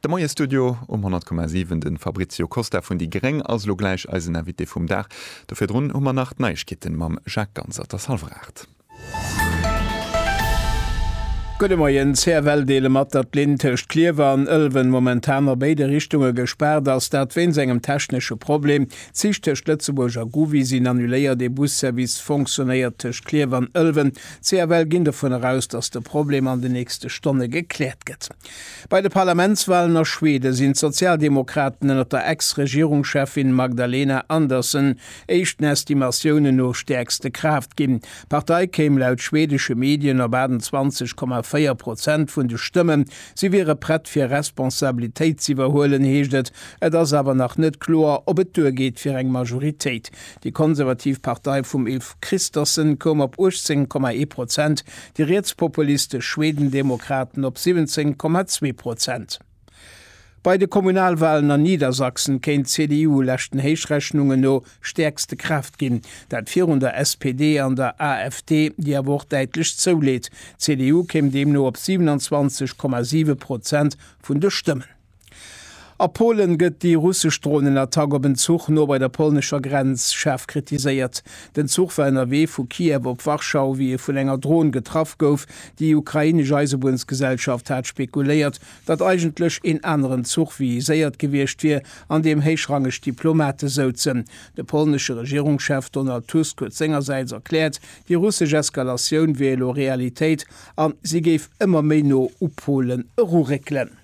De Moie-Studio um 100,7, de Fabrizio Costa vun déi gréng ass elo gläich eisen Invité vum Dag. Do virdrun hu mer nach d'Neiegkeete mam Jacques Ganser, et ass hallwer 8. Gudde Moien, CFL deele mat, datt d'Linn tëscht Klierwer an Ëlwen momentan a béide Richtunge gespaart ass. Dat wéinst engem technesche Problem. D'Zich tëscht Lëtzebuerg a Gouvy sinn annuléiert. Ee Busservice fonctionéiert tëscht Klierf an Ëlwen, CFL ginn dovunner aus, datt de Problem an de nächste Stonne gekläert gëtt. Bei de Parlamentswalen a Schwede sinn d'Sozialdemokraten ënner der Ex-Regierungscheffin Magdalena Andersson éischt den Estimatiounen no stäerkste Kraaft ginn. D'Partei kéim laut schwedesche Medien op 28,4 Prozent vun de Stëmmen. Si wiere prett fir Responsabilitéit z'iwwerhuelen, heescht et. Et ass awer nach net kloer, ob et duergeet fir eng Majoritéit. Déi konservativ Partei vum Ulf Kristersson koum op 18,1 Prozent, déi rietspopulistesch Schwedendemokraten op 17,2 Prozent. Bei de Kommunalwalen an Niedersachsen kéint d'CDU leschten Héichrechnungen no stäerkste Kraaft ginn, dat virun der SPD an der AfD, déi awer och däitlech zouleet. D'CDU kéim deemno op 27,7 Prozent vun de Stëmmen. A Polen gëtt déi russesch Dronenattack op en Zuch no bei der polnescher Grenz schaarf kritiséiert. Den Zuch war ënnerwee vu Kiew op Warschau, wéi e vun enger Dron getraff gouf. Déi ukrainesch Eisebuennsgesellschaft hat spekuléiert, datt eigentlech een aneren Zuch viséiert gewiescht wier, an deem héichrangeg Diplomate souzen. De polnesche Regierungschef Donald Tusk huet sengersäits erkläert, déi russesch Eskalatioun wier elo Realitéit an si géif ëmmer méi no u Polen eruréckelen.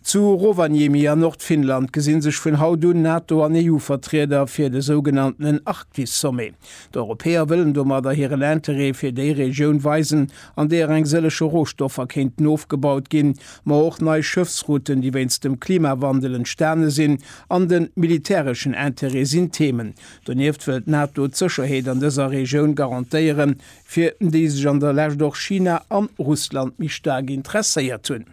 Zu Rovaniemi an Nordfinnland gesi sech vun haut un Nato an EU-Vertrieder fir de sougenanntenen Arktis-Sommet. D'Europäer wëllen domadder hiren Interêt fir déi Regioun weisen, an deeër eng sëllege Rohstoffer kéinten ofgebaut ginn, ma och nei Schëffsrouten, déi wéinst dem Klimawandel entstane sinn, an de militäreschen Interêt sinn Themen. Donieft wëll d'Nato d'Sécherheet an dëser Regioun garantéieren, fir déi sech an der Lescht och China an Russland méi staark interesséiert hunn.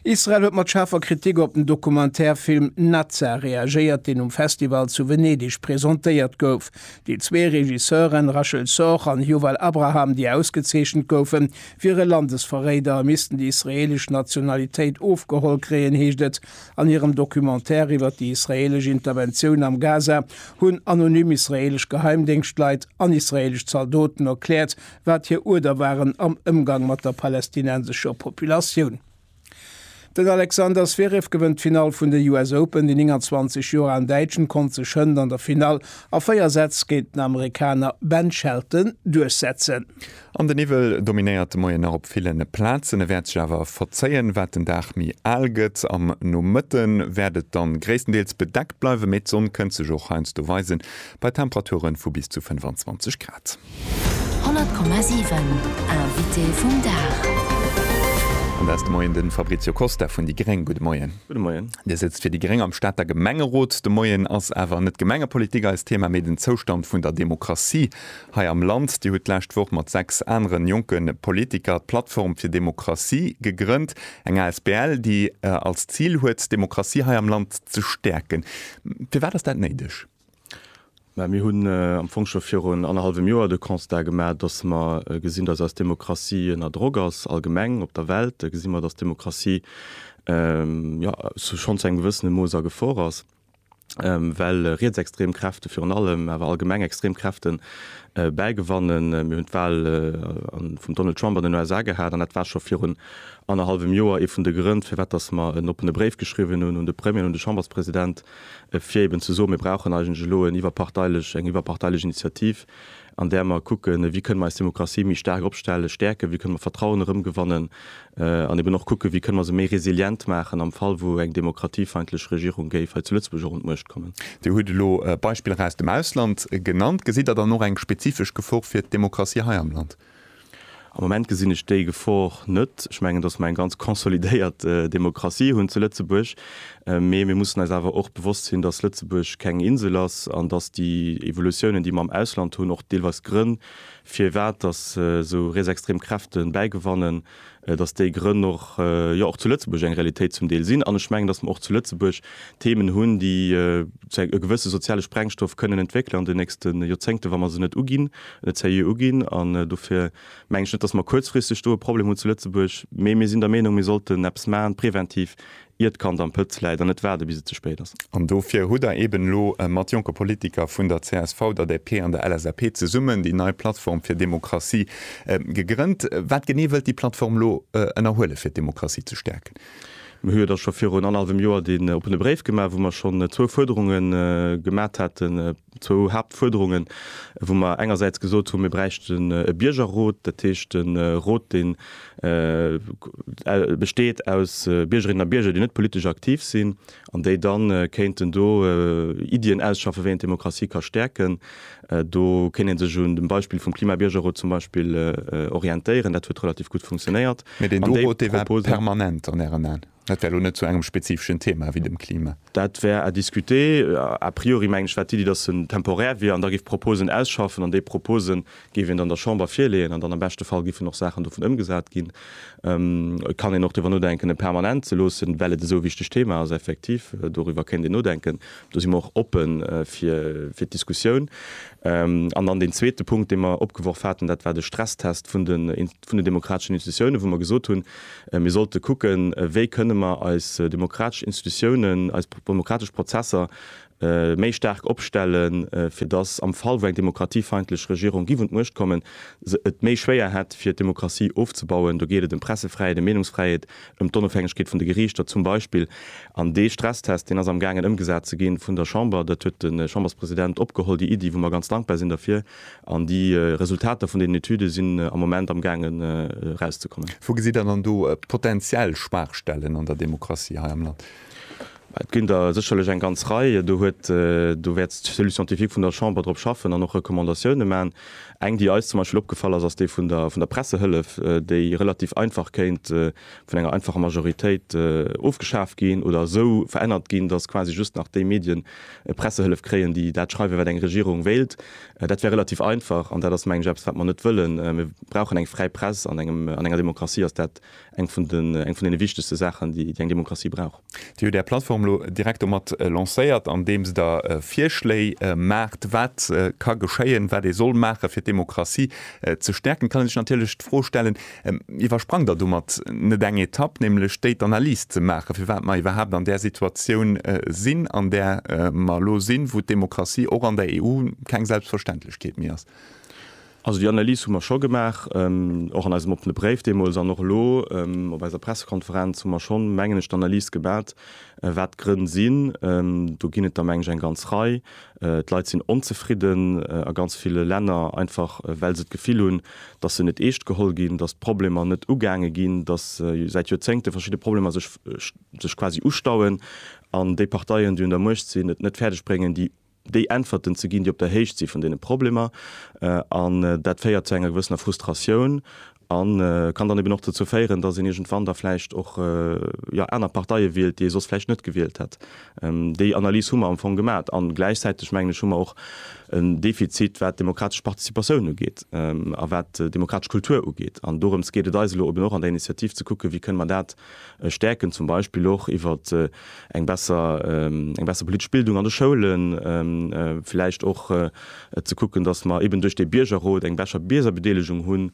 Israel huet mat schaarfer Kritik op den Dokumentärfilm Nazza reagéiert, deen um Festival zu Venedeg presentéiert gouf. Déi zwee Regisseuren, Rachel Sorge an Yuval Abraham, déi ausgezeechent goufen, wiere Landesverréider a missten déi israeelesch Nationalitéit ofgeholl kréien, heescht et An hirem Documentaire iwwer déi israeelesch Interventioun am Gaza hunn anonym israeelesch Geheimdéngschtleit an israeelesch Zaldoten erkläert, wat hir Uerder waren am Ëmgang mat der palästinensescher Populatioun. Den Alexander Zverev gewënnt d'Finall vun de US Open, De 29 Joer alen Däitschen konnt sech hënt an der Finall a 4 Sätz géint den Amerikaner Ben Shelton duerchsetzen. An de Niwwel dominéiert de Moien nach op ville Plazen. E wäert sech awer verzéien, wat den Dag méi al gëtt. Am Nomëtte wäert et dann gréisstendeels bedeckt bleiwen, mee d'Sonn kënnt sech och heiansdo weisen, bei Temperature vu bis zu 25 Grad. 100,7 Invité vum Dag. An dat ass de Moien de Fabrizio Costa vun déi gréng. Gudde Moien. Gudde Moien. Dir sëtzt fir déi gréng am Stater Gemengerot. De Moien ass awer net Gemengepolitik eist Thema, mee den Zoustand vun der Demokratie Hei am Land, Dir hutt d'lescht Woch mat 6 aneren jonke Politiker d'Plattform fir Demokratie gegrënnt, eng asbl, déi als Zil huet, d'Demokratie hei am Land ze stäerken. Firwat ass dat néideg? Mä mir hunn am Fong scho virun annerhallwem Joer de Constat gemaach, datt mer gesinn, datt eis Demokratie ënner Drock ass. Allgemeng op der Welt gesi mer, datt d'Demokratie, jo, schonn zu engem gewëssene Mooss a Gefor ass. well rietsextrem Kräfte virun allem, awer allgemeng extrem Kräfte bäigewannen. Mir hunn d'Wal vum Donald Trump an den USA gehat an dat war scho virun annerhallwem Joer ee vun de Grënn, firwat dass mer en oppene Bréif geschriwwen hunn un de Premier an un de Chamberspresident, fir eeben ze soen, Mir brauchen eigentlech elo en iwwerparteilech, eng iwwerparteilech Initiativ, an där mer kucken, wéi kënne mer eis Demokratie méi staark opstellen, stäerken, wéi kënne mer Vertrauen erëmgewannen an eben och kucken, wéi kënne mer se méi resilient maachen am Fall, wou eng demokratiefeindlech Regierung géif hei zu Lëtzebuerg och un d'Muecht kommen. Dir hutt elo Beispiller aus dem Ausland genannt. Gesitt Der dann och eng spezifesch Gefor fir d'Demokratie hei am Land? Am Moment gesinn ech déi Gefor net. Ech mengen, datt mer eng ganz consolidéiert Demokratie hunn zu Lëtzebuerg. Mee mir mussen eis awer och bewosst sinn, datt Lëtzebuerg keng Insel ass an datt déi Evolutiounen, déi mer am Ausland hunn, och deelweis Grënn, firwat datt esou rietsextrem Kräfte bäigewannen, dass déi Grënn och, jo och zu Lëtzebuerg eng Realitéit zum Deel sinn, an ech mengen, dass mer och zu Lëtzebuerg Themen hunn, déi zu e gewësse soziale Sprengstoff kënnen entwéckelen an den nächste Joerzéngten, wa mer se net uginn, net seriö uginn. An dofir mengen ech net, dass mer kuerzfristeg do e Problem hunn zu Lëtzebuerg, mee mir sinn der Meenung, mir sollten eppes maachen, preventiv, ier d'Kand am Pëtz läit, an net waarde bis et ze spéit ass. An dofir hutt Der eben elo mat jonke Politiker vun der csv, der DP an der LSAP zesummen déi nei Plattform fir Demokratie gegrënnt. Wat genee wëllt déi Plattform elo ënnerhuelen, fir d'Demokratie ze stäerken? Mir hu jo da scho virun annerhallwem Joer deen oppene Bréif gemaach, wou mer schonn zwou Fuerderunge gemat haten. Zwou Haaptfuerderungen, wou mer engersäits gesot hunn, mir bräichten e Biergerrot, dat heescht e Rot, dee besteet aus Biergerinnen a Bierger, déi net politesch aktiv sinn an déi da kéinten do Iddien ausschaffe wéi een d'Demokratie ka stäerken. Do kéint ee sech un dem Beispill vum Klimabiergerrot zum Beispill orientéieren. Dat huet relativ gutt funktionéiert. Mee deen do Rot, dee war permanent an Ären Aen? Dat wär elo net zu engem spezifeschen Thema wéi dem Klima. Dat wär à discuter. A priori mengen ech war d'Iddi, dass en temporär wier an da géif Proposen ausschaffen an déi Propose géif een dann der Chamber virleeën an dann am beschte Fall géifen och Saachen dovun ëmgesat ginn. Et kann een och driwwer nodenken e permanent ze loossen, well et esou e wichteg Thema ass. Effektiv, doriwwer kéint een nodenken. Do si mer och oppe fir d'Diskussioun. An dann deen zweete Punkt, dee mer opgeworf haten, dat war de Stresstest vun den. vun den demokrateschen Institutiounen, wou mer gesot hunn, mir sollte kucken, wéi kënne mer eis demokratesch Institutiounen, eis demokratesch Prozesser méi staark opstellen, fir dass am Fall, wou eng demokratiefeindlech Regierung giff un d'Muecht kommen, se et méi schwéier hätt, fir d'Demokratie ofzebauen. Do geet et ëm Pressefräiheet, ëm Meenungsfräiheet, ëm d'Onofhängegkeet vun de Geriichter zum Beispill. An dee Stresstest, deen ass amgaangen ëmgesat ze gi vun der Chamber, dat huet de Chamberspresident opgeholl, déi Iddi, wou mer ganz dankbar sinn derfir. An déi Resultater vun deenen Etüde sinn am Moment am gaangen erauszekommen. Wou gesitt Der dann do potentiell Schwaachstellen an der Demokratie hei am Land? Et ginn der sécherlech eng ganz Rei. Do huet, do wäert d'Cellule scientifique vun der Chamber drop schaffen an och Recommandatioune maachen. Eng, déi eis zum Beispill opgefall ass, ass déi vun der, vun der Pressehëllef, déi relativ einfach kéint, vun enger einfacher Majoritéit ofgeschaaft ginn oder esou verännert ginn, datt quasi just nach déi Medien Pressehëllef kréien, déi dat schreiwen, wat eng Regierung wéilt. Dat wär relativ einfach an dat ass, mengen ech, eppes, wat mer net wëllen. Mir brauchen eng fräi Press. An enger Demokratie ass dat eng vun deene wichtegste Saachen, déi eng Demokratie brauch. Dir hutt Är Plattform elo direkt domat lancéiert, andeems Der Virschléi maacht, wat ka geschéien, wat ee soll maachen, fir d'Demokratie ze stäerken. Et kann ee sech natierlech d'Fro stellen, Iwwersprangt Der domat net eng Etapp, nämlech déi, d'Analys ze maachen, firwat mer iwwerhaapt an där Situatioun sinn, an där mer elo sinn, wou d'Demokratie och an der EU keng Selbstverständlechkeet méi ass? Also déi Analys hu mer scho gemaach, och an eisem oppene Bréif deemools an och elo op eiser Pressekonferenz hu mer scho, mengen ech, d'Analys gemat, wat d'Grënn sinn. Do ginn et der, mengen ech, eng ganz Rei. D'Leit sinn onzefridden a ganz ville Länner, einfach well se d'Gefill hunn, datt se net eescht geholl ginn, datt d'Problemer net ugaange ginn, datt säit Joerzéngte verschidde Problemer sech quasi ustauen an déi Parteien, déi un der Muecht sinn, et net fäerdeg bréngen, déi déi Äntwerten ze ginn, déi op der Héicht si vun deene Problemer. An dat féiert zu enger gewëssener Frustratioun a kann dann eben och dozou féieren, datt een iergendwann da vläicht och, jo, aner Parteie wielt, déi ee soss vläicht net gewielt hätt. Déi Analys hu mer am Fong gemat. A gläichzäiteg, mengen ech, hu mer och en Defizit, wat d'demokratesch Participatioun ugeet a wat d'demokratesch Kultur ugeet. An dorëms geet et eis elo eben och an der Initiativ, ze kucken, wéi kënne mer dat stäerken, zum Beispill och iwwer eng besser eng besser politesch Bildung an de Schoulen, vläicht och ze kucken, datt mer eben duerch dee Biergerrot eng bescher Biergerbedeelegung hunn,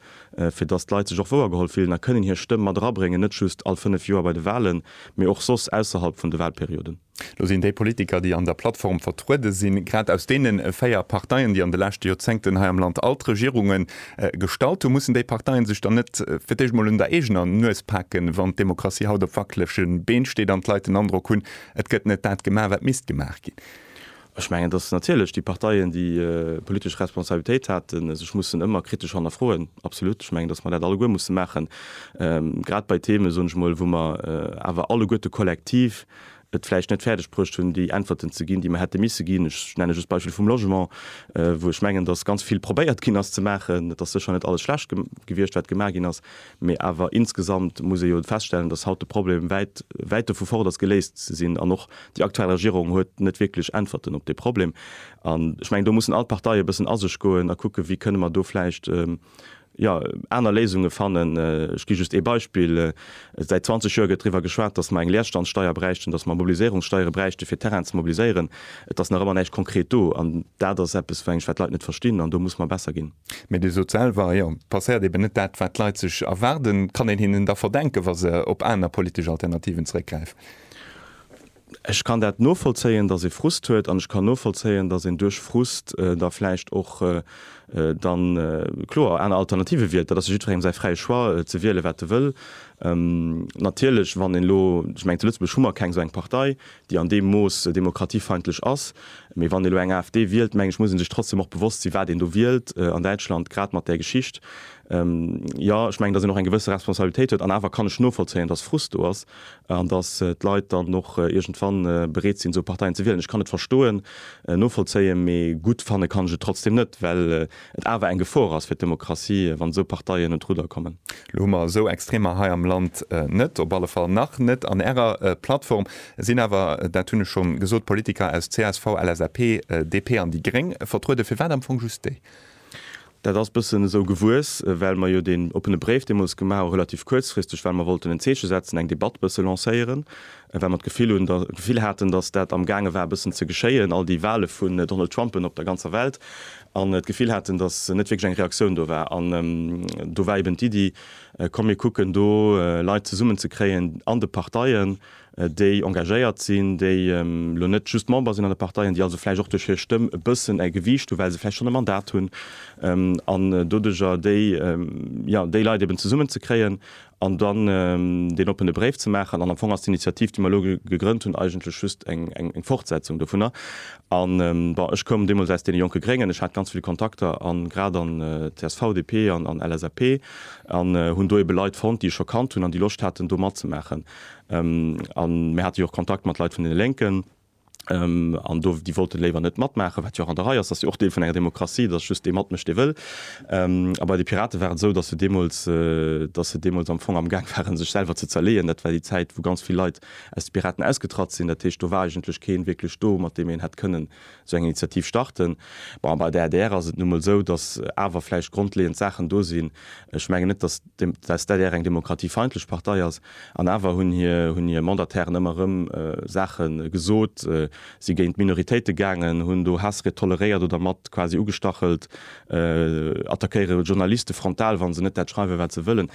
fir datt d'Leit sech och wouergeholl fillen a kënnen hir Stëmm mat erabréngen, net just all fënnef Joer bei de Wahlen, mee och soss ausserhalb vun de Wahlperioden. Elo sinn déi Politiker, déi an der Plattform vertruede sinn, grad aus deene véier Parteien, déi an de leschte Joerzéngten hei am Land all d'Regierunge gestallt hunn. Mussen déi Parteie sech dann net fir d'éischt emol un der eegener Nues paken, wann d'Demokratie haut op wackelege Been steet an d'Leit den Androck hunn, et gëtt net dat gemaach, wat misst gemaach ginn? Ech mengen, dass natierlech déi Parteien, déi politesch Responsabilitéit haten, sech mussen ëmmer kritesch hannerfroen, absolut. Ech mengen, dass mer dat alleguer musse maachen, grad bei Themen, soen ech emol, wou mer awer alleguerte kollektiv et vläicht net fäerdeg bruecht hunn, déi Äntwerten ze ginn, déi mer hätte misse ginn. Ech nenne just d'Beispill vum Logement, wou ech mengen, dass ganz vill probéiert ginn ass ze maachen. Et ass sécher net alles schlecht gewiescht, wat gemaach ginn ass, Mee awer insgesamt muss ee jo feststellen, dass haut de Problem wäit, wäit dovu fort ass geléist ze sinn. An och déi aktuell Regierung huet net wierklech Äntwerten op dee Problem. An ech mengen, do mussen all d'Parteie e bëssen a sech goen a kucken, wéi kënne mer do vläicht, jo, aner Léisunge fannen. Ech gi just ee Beispill, Säit 20 Joer gëtt driwwer geschwat, dass mer eng Leerstandssteuer bräichten, dass mer Mobiliséierungssteiere bräichte fir Terrainen ze mobiliséieren. Et ass nach ëmmer näischt konkret do an dat ass eppes, mengen ech, wat d'Leit net verstinn an do muss mer besser ginn. Mee Dir sot selwer, jo, et passéiert eeben net dat, wat d'Leit sech erwaarden. Kann een hinnen da verdenken, wa se op aner politesch Alternativen zeréckgräifen? Ech kann dat novollzéien, datt ee Frust huet an ech kann novollzéien, datt een duerch Frust da vläicht och dann kloer aner Alternative wielt. Dat ass jo jiddwerengem säi fräie Choix, ze wiele wat e wëll. Natierlech, wann een elo, ech mengen zu Lëtzebuerg hu mer keng esou eng Partei, déi an deem Mooss demokratiefeindlech ass. Mee wann ee lo eng AfD wielt, mengen ech, muss ee sech trotzdem och bewosst sinn, wat een do wielt an Däitschland, grad mat där Geschicht. Jo, ech mengen, datt een och eng gewësse Responsabilitéit huet. An awer kann ech novollzéien, datt Frust do ass an datt d'Leit dann och iergendwann bereet sinn, esou Parteien ze wielen. Ech kann et verstoen, novollzéien, mee gutt fanne kann ech et trotzdem net, well et awer eng Gefor ass fir d'Demokratie, wann esou Parteien un d'Rudder kommen. Elo hu mer esou Extremer hei am Land net, op alle Fall nach net an Ärer Plattform. Et sinn awer, dat hunn ech scho gesot, Politiker aus csv, LSAP, DP an déi gréng vertrueden. Firwat am Fong just déi? Dat ass e bëssen esou gewuess, well mer jo deen oppene Bréif deemools gemaach hu relativ kuerzfristeg, well mer wollten en Zeeche setzen, eng Debatt e bësse lancéieren. A well mer d'Gefill hunn, d'Gefill haten, datt dat am gaange war e bëssen ze geschéien, all déi Wahle vun Donald Trumpen op der ganzer Welt, an d'Gefill haten, datt net wierklech eng Reaktioun do war. An do war eben d'Iddi, komm mir kucken do Leit zesummen ze kréien an de Parteien, déi engagéiert sinn, déi elo net just Member sinn an de Parteien, déi also vläicht och duerch hir Stëmm e bëssen e Gewiicht hu well se vläicht schonn e Mandat hunn, an doduerjer déi, jo, déi Leit eben zesummen ze kréien an dann deen oppene Bréif ze maachen, an am Fong ass d'Initiativ, déi mer elo gegrënnt hunn, eigentlech just eng Fortsetzung dovunner. An, bon, ech koum deemools aus deene jonke Gréngen, ech hat ganz vill Kontakter a grad an csv, DP an LSAP, an hunn do eebe Leit fonnt, déi ech scho kannt hunn an déi Loscht haten, do matzemaachen. A mir hate jo och Kontakt mat Leit vun deene Lénken. an do déi wollten léiwer net matmaachen, wat jo och an der Rei ass, dat ass jo och Deel vun enger Demokratie, dass just dee matmécht, dee wëll. A bei de Piraten war et esou, dass se deemools, dass se deemools am Fong amgaang waren, sech selwer ze zerleeën. Dat war déi Zäit, wou ganz vill Leit aus de Piraten ausgetratt sinn. Dat heescht, do war eigentlech keen wierklech do, mat deem een hätt kënnen esou eng Initiativ starten. Bon, a bei der adr ass et nu emol esou, dass awer vläicht grondleeënd Saachen do sinn, ech mengen net, dass, dass d'LDR eng demokratiefeindlech Partei ass, an awer hunn hir Mandatairen ëmmer erëm Saache gesot, si géint d'Minoritéite gaangen, hunn do Haassried toleréiert oder mat quasi ugestachelt, attackéiere Journaliste frontal, wa se net dat schreiwen, wat se wëllen.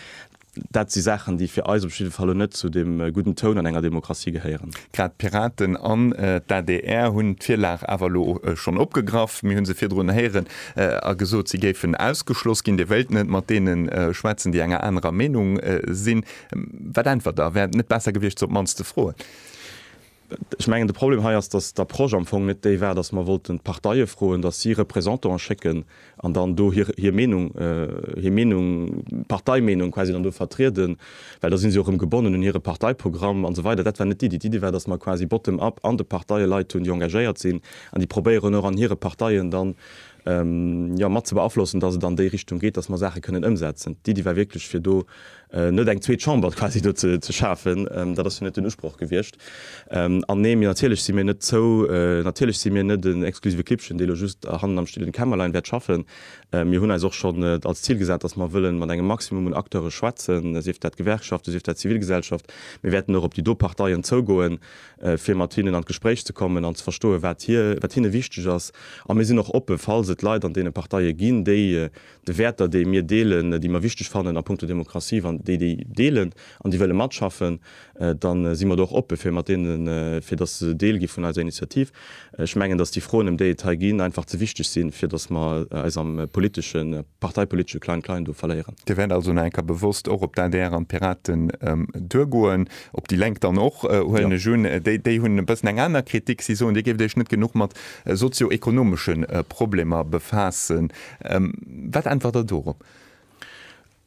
Dat si Saachen, déi fir eis op jidde Fall elo net zu deem gudden Toun an enger Demokratie gehéieren. Grad d'Piraten an d'ADR hunn d'Virlag awer elo schonn opgegraff. Mir hu se virdrun héieren, a gesot, si géifen ausgeschloss ginn, Dir wéilt net mat deene schwätzen, déi enger anerer Meenung sinn. Wat äntwert Der? Wär et net besser gewiescht, se op d'mannst ze froen? Ech mengen, de Problem hei ass, datt d'Approche am Fong net déi war, datt mer wollten d'Parteie froen, datt si Représentanten schécken an dann do hir Meenung, hir Meenung, d'Parteimeenung quasi dann do vertrieden. Well da si se jo erëm gebonnen un hire Parteiprogramm an esou weider. Dat war net d'Iddi. D'Iddi war, datt mer quasi bottom up an de Parteie Leit hunn, déi engagéiert sinn an déi probéieren och an hire Parteien dann, jo, mat ze beaflossen, datt et an déi Richtung geet, datt mer Saache kënnen ëmsetzen. D'Iddi war wierklech, fir do net eng zweet Chamber quasi do ze schafen. Dat ass jo net den Usproch gewiescht. An nee, mir, natierlech si mir net zou, natierlech si mir net en exklusive Klibbchen, dee lo just hannen am stillen Kämmerlein wäert schaffen. Mir hunn eis och schonn als Zil gesat, dass mer wëlle mat engem Maximum un Acteure schwätzen, sief dat Gewerkschaften, sief dat Zivilgesellschaft. Mir wäerten och op déi do Parteien zougoen, fir mat hinnen an d'Gespréich ze kommen an ze verstoen, wat hir, wat hinne wichteg ass. A mir sinn och oppe, falls et Leit an deene Parteie ginn, déi de Wäerter, déi mir deelen, déi mer wichteg fannen a punkto Demokratie, wann déi déi deelen, an déi wëlle matschaffen, da si mer do och oppe fir mat deenen, fir datt se Deel gi vun eiser Initiativ. Ech mengen, datt déi Froen, ëm déi et hei ginn, einfach ze wichteg sinn, fir datt mer eis am politesche, parteipolitesche Klein-Klein do verléieren. Dir wäert also nach eng Kéier bewosst och op d'ADR an d'Piraten duergoen, op déi Lénk dann och, huelen ech un. Déi hunn e bëssen eng aner Kritik. Si soen, Dir géift Iech net genuch mat sozio-ekonomesche Problemer befaassen. Wat äntwert Der dorop?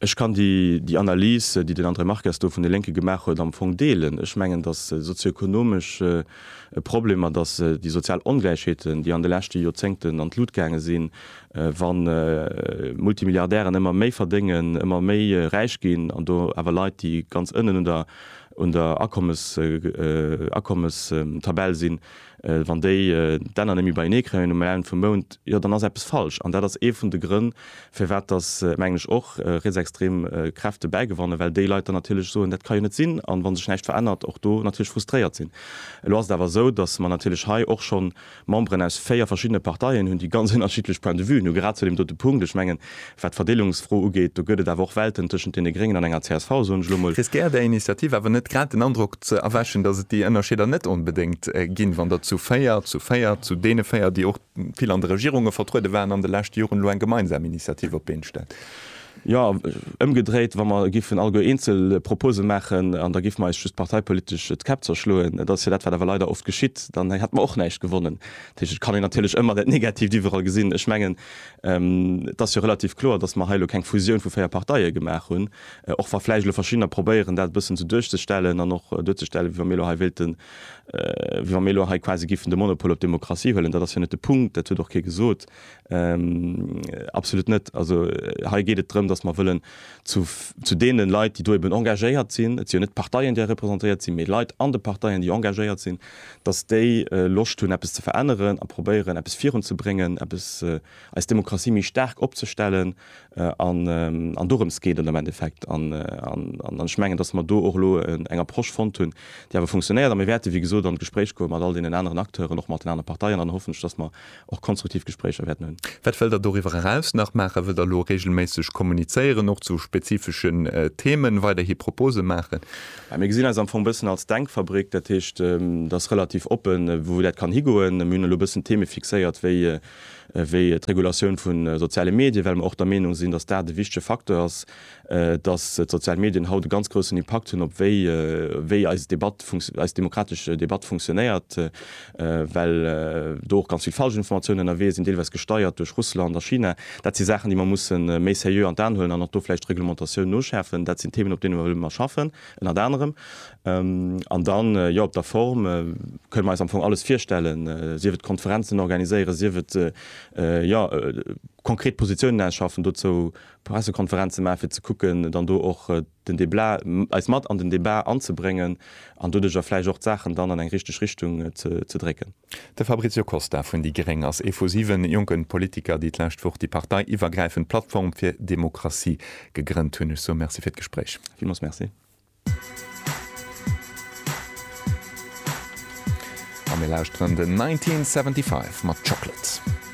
Ech kann déi, déi Analys, déi den André Marques do vun de Lénke gemaach huet, am Fong deelen. Ech mengen, dass sozioekonomesch Problemer, dass déi sozial Ongläichheeten, déi an de leschte Joerzéngten an d'Lut gaange sinn, wa Multimilliardären ëmmer méi verdéngen, ëmmer méi räich ginn an do awer Leit, déi ganz ënnen un der Akommes, Akommestabell sinn, Wann déi d'Enner net méi beienee kréien um Enn vum Mount, jo dann ass eppes falsch. An dat ass ee vun de Grënn, firwat dass, mengen ech, och rietsextrem Kräfte bäigewannen, well déi Leit dann natierlech soen, dat ka jo net sinn, an wa sech näischt verännert, och do natierlech frustréiert sinn. Elo ass et awer esou, dass mer natierlech hei och schonn Memberen aus véier verschiddene Parteien hunn, déi ganz ënnerschiddlech Point de vuen hunn, grad zu deem dote Punkt. Ech mengen, Wat d'Verdeelungsfro ugeet, do gëtt et awer och Welten tëschent deene Gréngen an enger csv, soen ech elo emol. Riskéiert Är Initiativ awer net grad den Androck ze erwächen, datt et déi Ënnerscheeder net onbedéngt ginn, wann Der zu véier, zu véier, zu deene véier, déi och vill an de Regierunge vertruede waren an de leschte Joren, elo eng gemeinsam Initiativ op d'Been stellt? Jo, ëmgedréit, wa mer giffen alleguer eenzel Propose maachen an da giffe mer eis just parteipolitesch d'Käpp zerschloen, dat ass jo dat, wat awer leider oft geschitt, dann hätte mer och näischt gewonnen. Dat heescht, et kann een natierlech ëmmer dat Negativt iwwerall gesinn. Ech mengen, Et ass jo relativ kloer, datt mer hei elo keng Fusioun vu véier Parteie gemaach hunn, och wa vläicht elo verschiddener probéieren, dat e bëssen esou duerchzestellen an och duerzestellen, wéi wa mir elo hei wéilten, wéi wa mir elo hei quasi géifen de Monopol op d'Demokratie huelen. Dat ass jo net de Punkt, dat huet och kee gesot, absolut net. Also hei geet et drëm, datt mer wëllen zu deene Leit, déi do eben engagéiert sinn, et si jo net d'Parteien, déi hei representéiert sinn, mee Leit an de Parteien, déi engagéiert sinn, dass déi Loscht hunn eppes ze veränneren a probéieren eppes virun ze bréngen, eppes eis Demokratie méi staark opzestellen an dorëms geet et am Endeffekt. An ech mengen, dass mer do och elo eng Approche fonnt hunn, déi awer funktionéiert a mir wäerte wéi gesot an d'Gespréich goe mat all deenen aneren Acteuren, och mat den anere Parteien an hoffentlech, dass mer och konstruktiv Gespréicher wäerten hunn. Wat wëllt Der doriwwer eraus nach maachen? Wëllt Der elo reegelméisseg kommunizéieren, och zu spezifeschen Themen, weiderhi Propose maachen? Mir gesinn eis am Fong e bëssen als Denkfabrik, dat heescht, et ass relativ oppen, wou dat kann higoen. Mir hunn elo e bëssen Theme fixéiert wéi d'Regulatioun vu soziale Medien, well mer och der Meenung sinn, dass dat e wichtege Facteur ass, dass d'sozial Medien haut e ganz groussen Impakt hunn op wéi wéi eis Debatt funkti eis demokratesch Debatt funktionéiert, well do och ganz vill falsch Informatiounen ënnerwee sinn, deelweis gesteiert duerch Russland a China. Dat si Saachen, déi mer musse méi seriö an d'An huelen an och do vläicht d'Reglementatioun noschäerfen. Dat sinn Themen, op deene mer wëlle mer schaffen, ënnert anerem. An dann, jo, op der Form kënne mer eis am Fong alles virstellen, sief et Konferenzen organiséieren, sief et, jo, konkret Positiounen ausschaffen. Dozou Pressekonferenz ze maachen, fir ze kucken, dann do och den Debla, eis mat an den Debat anzebréngen an doduerjer vläicht och d'Saachen dann an eng richteg Richtung ze drécken. De Fabrizio Costa vun déi gréng ass ee vu siwe jonke Politiker, déi d'lescht Woch déi parteiiwwergräifend Plattform fir Demokratie gegrënnt hunn. Ech soe Merci fir d'Gespréich. Villmools Merci. A mir lauschteren den 1975 mat Chocolate.